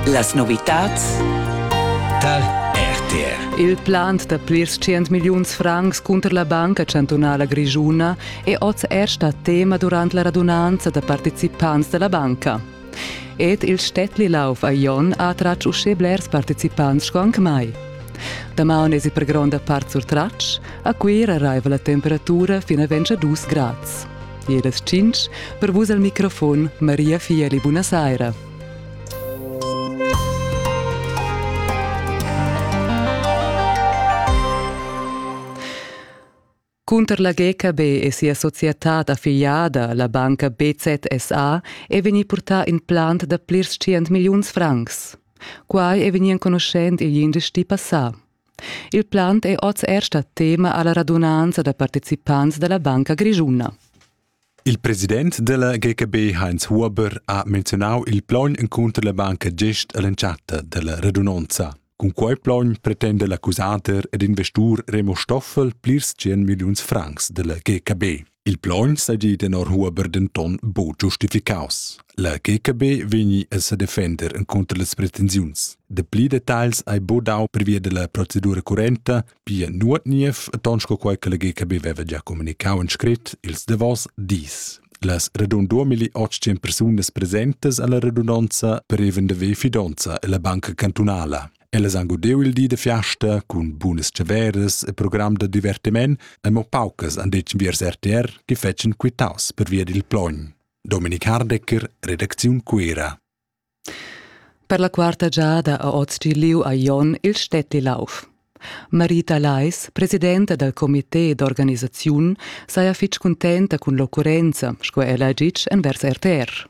Las novitads tar RTR. Il plant da plirs tschient milliuns francs cunter la Banca chantunala grischuna è oz er stà tema durant la radunanza da participants da la banca. Ed il Städtli Lauf a Jon ha tratg uschè blers participants sco anc mai. Damaun esi per gronda part surtratg, a Cuira raiva la temperatura fin a 22 grads. e las tschintg per vus al microfon Maria Fieli. Buna saira. Cunter la GKB e sia societad affiliada, la banca BZSA, è vegnì purtà in plant da plirs tschient milliuns francs. Quai è vegnì enconuschent igl indici passà. Il plant è oz er stà tema a la radunanza da participants da la Banca Grischuna. Il president della GKB Heinz Huber ha menzionau il plogn encunter la banca gest all'entschatta della radunanza. Cun quei plogn pretenda l'accusader ed investur Remo Stoffel plirs 100 milliuns francs della GKB. Il plaun sedi tenor Huber denton buc giustificaus. La GKB vegni a sedefender contro las pretensiuns. De pli detagls hai bu dau previa della procedura currenta, pia nuot niev, ton sco quei che la GKB veva già comunicau en scrit ils davos dis. Las radun 2800 persunas presentes alla radunanza preven de ve fidonza e la banca cantunala. Ellas han gudeu il di da fiasta cun bunas tscheveras e program da divertiment e mo paucas han detg viers RTR che fetschen quitaus pervia dil plogn. Dominik Hardecker, redacziun Cuera. Per la quarta giada ha oz liu a Jon il Stetti Lauf. Marita Leis, presidenta dal comité d'organisaziun, saja fitg cuntenta cun l'occurrenza, sco ella ha ditg envers RTR.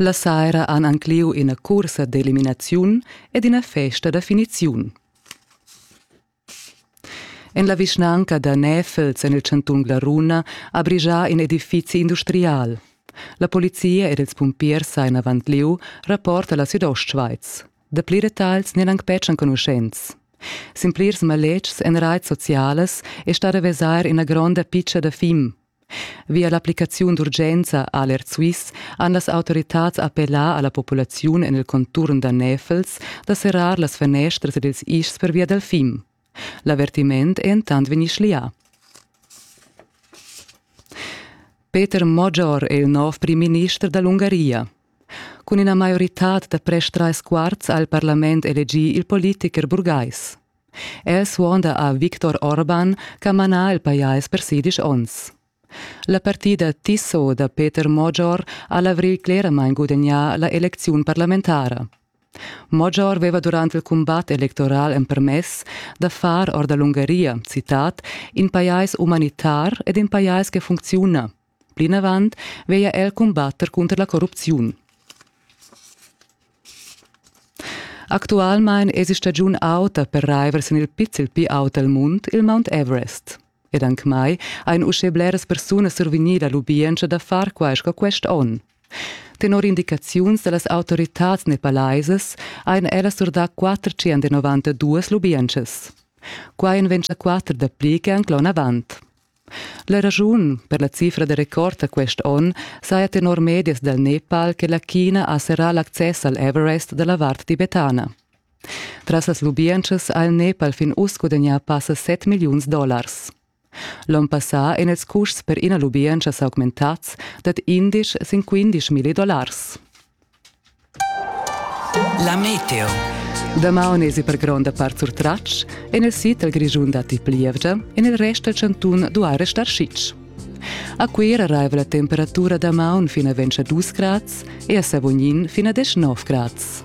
La saira han anc lieu ina cursa d'eliminaziun ed ina festa da finiziun. En la vischnanca da Näfels en il chantun Glaruna ha brigià in edifizi industrial. La polizia ed ils pumpiers ein avant lieu, rapporta la Südostschweiz. Dapli detagls n'eran anc betg enconuschents. Sin plirs maletgs en raits socialas è stata vesair ina gronda pizza da fim, Via l'applicaziun d'urgenza Aler Swiss han las autoritads appellà a la populaziun en il conturn da Näfels da serrar las fanestras ed ils ischs pervia dal fim. L'avertiment è entant vegnì schlià. Peter Moggior è il nov prim-minister da l'Ungaria. Cun ina maioritad da prest trais quarts ha il parlament elegì il politicher burgais. El suonda a Viktor Orban ch'ha manà il pajais per sedisch onns. La partida Tiso da Peter Mojor ha l'avrigl cleramain gudagnà la elecziun parlamentara. Mojor aveva durant il cumbat electoral empermess da far or da l'Ungaria, citat, in pajais umanitar ed in pajais che funcziuna, Plinavant veglia el cumbatter cunter la corrupziun. Actualmein èsi stagiun auta per raiver sin il pizzel pli aut dal mund il Mount Everest. Ed anc mai ein uschè bleras persunas survegnì la lubientscha da far quai sco quest onn. Tenor indicaziuns da las autoritads nepalaisas ein ellas surdà 492 lubientschas. Quai en ventg da quatter dapli che anc l'onn avant. La raschun per la cifra da record da quest onn saja tenor medias dal Nepal che la China ha serrà l'access al Everest da la vart tibetana. Tras las lubientschas ha il Nepal fin uss gudagnà passa 7 milliuns dollars. L'onn passà èn ils custs per ina lubientscha s'augmentads dad 11 sin 15 milli dollars. La meteo. Damaun esi per gronda part surtratg, en il sid dal Grischun datti plievgia, en il rest dal chantun duai restar sitg. A Cuira raiva la temperatura damaun fin a 22 grads e a Savognin fin a 19 grads.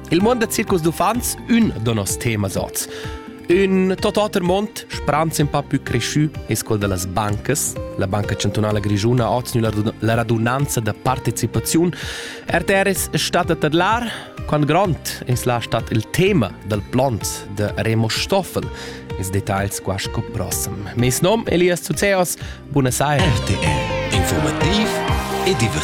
Il mond da circus d'uffants ün da nos temas oz. Ün tot oter mond, spranz un pa più cresciù, es quel da las bancas. La Banca Chantunala Grischuna ha oznu la radunanza da partecipaziun. RTR es stat a tadlar quant grond es la stat il tema dal plont de Remo Stoffel. Is details qua sco prossem. Mes nom Elias Zuzeos, buona saira. RTR, informativ e divertint.